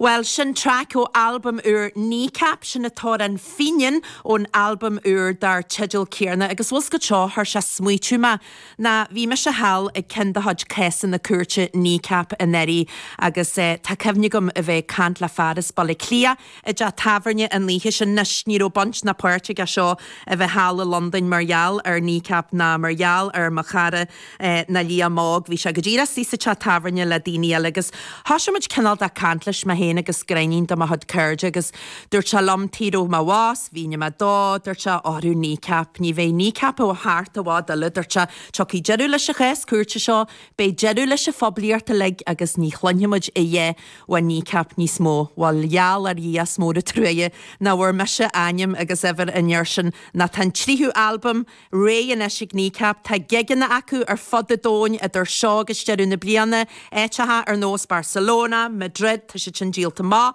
Bhuel, sin traic ó albam úr Kneecap, sin an t-amhrán Fenian ón albam úr dar teideal céanna agus bhfuil a fhios agat seo, chuir sé ag smaoitiú mé Ná bhí mise thall ag ceann de chuid cásanna cúirte Kneecap anuraidh agus tá cuimhne agam a bheith ag caint le fear as Baile Átha Cliath i dteach tábhairne an oíche sin. Anois, ní raibh baint ná páirt aige seo a bheith thall i Londain mar gheall ar Kneecap ná mar gheall ar Mo Chara ná Liam Óg. Bhí sé go díreach istigh sa teach tábhairne le daoine eile agus thoisigh muid cineál de chaint leis, mé féin agus gráinnín de mo chuid cairde agus Dúirt sé liom tuige a raibh mé abhus, mhínigh mé dó, dúirt sé, Óra Kneecap, ní bheidh Kneecap thart i bhfad eile, dúirt sé, tiocfaidh deireadh leis an chás cúirte seo, beidh deireadh leis an phoiblíocht uilig agus ní chluinfidh muid a dhath fá Kneecap níos mó. Bhuel, gheall ar Dhia is mór an truaighe nach bhfuair mise ainm agus uimhir an fhir sin ná tá an tríú albam réidh anois ag Kneecap, tá gigeanna acu ar fud an domhain idir seo agus deireadh na bliana, áiteacha ar nós Barcelona, Madrid, tá siad sin díolta amach.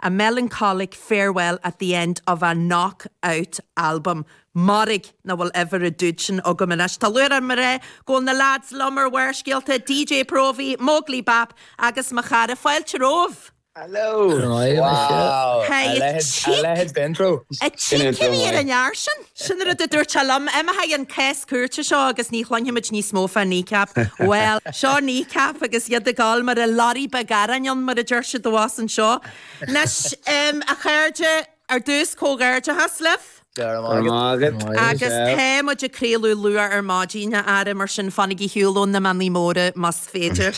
A melancholic farewell at the end of a knock-out album. Mairg nach bhfuil uimhir an dude sin agam anois. Tá lúcháir orm a rá go bhfuil na leaids liom ar Bharrscéalta, DJ Próvaí, Móglaí Bap agus Mo Chara. Fáilte romhaibh! Hello! Craoladh sé. Wow! Hey, A leithéid, a chic! leithéid d'intro! A Sin chic! intro Cén uair a maith. ndear sin? Sin rud a dúirt sé liom. Imeoidh an cás cúirte seo agus ní chluinfidh muid níos mó fá Kneecap. Bhuel, seo Kneecap agus iad ag gabháil mar a lorry beag aráin ann, mar a deir siad abhus anseo. Anois, a chairde, ar dtús, comhghairdeachas libh. Go raibh maith agat. Agus tá muid ag craoladh luath ar maidin, a fheara, mar sin fanaigí ar shiúl ó na mionnaí móra más féidir.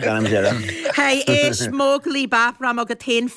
Gan deireadh. Hey, éist, Móglaí Bap, raibh mé agat féin.